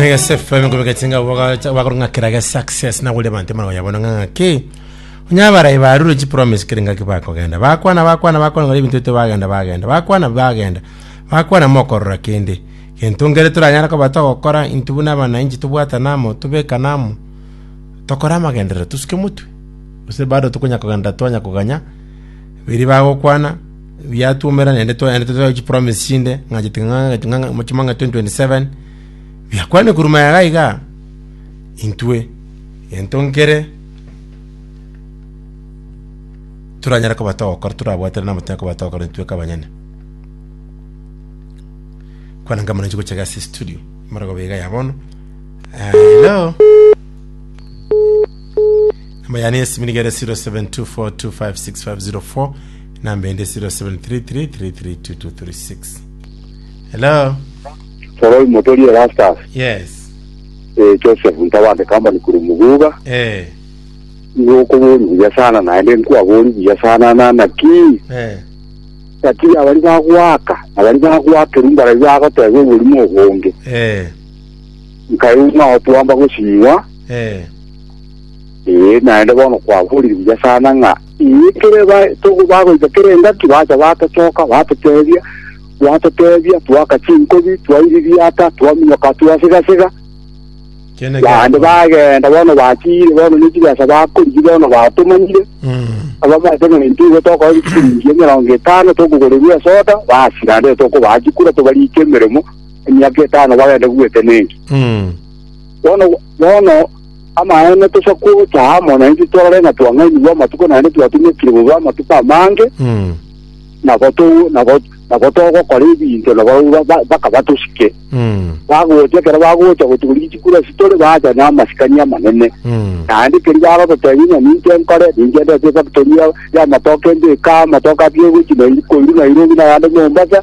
Egesefemi kobegetinga bakorong'akera ge success nagore bante mara yabona ng'aki onyabarai barure chi promise kere ng'aki bakogenda bakwana bakwana bakwana ng'ari ebinto bito bagenda bagenda bakwana bagenda bakwana mokorora kende gento ngere toranyara koba togokora intwe buna abananchi tobwata namo tobeka namo tokore amagenderero tosuke motwe gose bado tokonya kogenda twanya koganya biri bagokwana biatwomera naende twaendete tware chipromise chinde ng'a chimang'ana 2027 biakwane korwa maya iga iga, intwe gento nkere toranyare koba togokora torabwatane n'amatwe aye koba togokora intwe kabanyene. Kwana inga mono inche gochia iga ase estudio amariogo iga ya bono hello namba yane ya esimi niga ere 0724256504. Number ende 0733332236. Hello. Soroi Motori Erastus, Yes. eh, Joseph Ntabande Company kuri Muguga, Eh. igo okobori buya sana naende nkwabori buya sana na naki Eh. naki abari bagwaka abari bagwakeru mbarabi bagoteba oborimo obonge Eh. nkae ng'a otwamba gosinywa Eh. Ee, naende bono kwaborire buya sana ng'a ee, ekero ba- togo- bagoita kera engaki bacha batochoka batotebia, gwatotebia twaka chinkobi, twairi riata, twaminyoka twa siga-siga. Kiane Naende giakora. bagenda bono batiire bono ne chibesa bakorigia bono batomanyire Mm. ababate ng'a intwe igo tokora chiringi emerongo etano tokogorerwa esoda basi naende tokobaa chikura tobarike emeremo emiaka etano bagende gwete nenki Mm. bono bono Amaene tosa gocha amo naintwe torore ng'a twang'ainigwe amatuko naende twatumekire bobe amatuko amange, Mm. nabo to- nabo nabo togokora ebinto nabo ba- ba- baka batosike. Mm. Bagocha ekero bagocha gotuguria chikuru ase tore bacha namasikani amanene. Mm. naende keri bagototebia ng'a ninche nkore ninche ndete efactory ya- y'amatoke mbeka amatoke atio gochi Nai- koiru nairobi nayande mombasa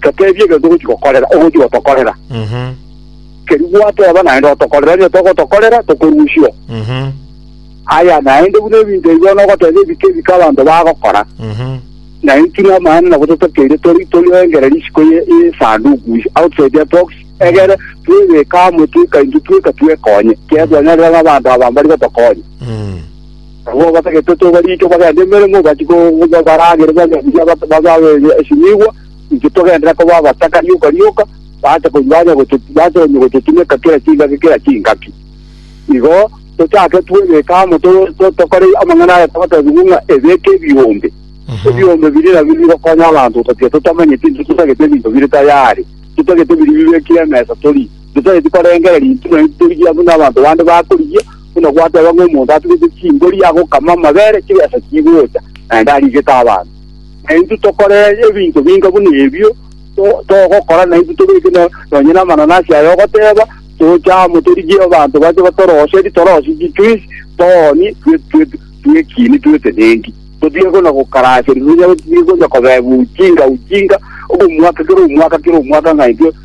Toteebie egento ogochi gokorera, ogochi gotokorera. Mhm. Keria gwateba naende otokorera, onye togotokorera, tokorusia. Mhm. Aya naende buna ebinto ebi bono ogoteba ebike ebike abanto bagokora, Mhm. na intwe na amaene nabo totokeire tori tori engere risiko ye ye sanduku is outside the box egere twebeka amo tweka intwe tweka twekonye kebwa nyarira na abanto aba mbari gotokonya. Mm. Abwo abatagete tobarike bagende emeremo, bachie koba baragere banywe ebiya, bababe esinigwa, intwe togenderere koba abataka rioka rioka, baache ko banya gotu baache onye gototumeka kera chingaki kera chingaki. Igo tochake twebeke amo to- to- tokore amang'ana aya twatebigwe ng'a ebeke ebiombe. Ebiombe biri nabio bigokonya abanto gotatiga totamanyeti intwe totagete ebinto bire tayari, totagete biri bibekire emesa tori, totageti korengereria intwe nonya torigia buna abanto bande bakorigia, buna gwateba ng'a omonto atugete chimbori agokama amabere chibesa chigocha, naende arigete abanto. Na intwe tokore ebinto binga buna ebio, to- togokora na intwe tobeke no- nonye namananasi aya ogoteba, toche amo torigie abanto bache batorose ritorosi chitwisi, toonie, twe- twe- twekinie twetenengi. Totige buna gokaraserwa, totige buna kobebwa ujinga ujinga, omwaka kera omwaka kera omwaka ng'a intwe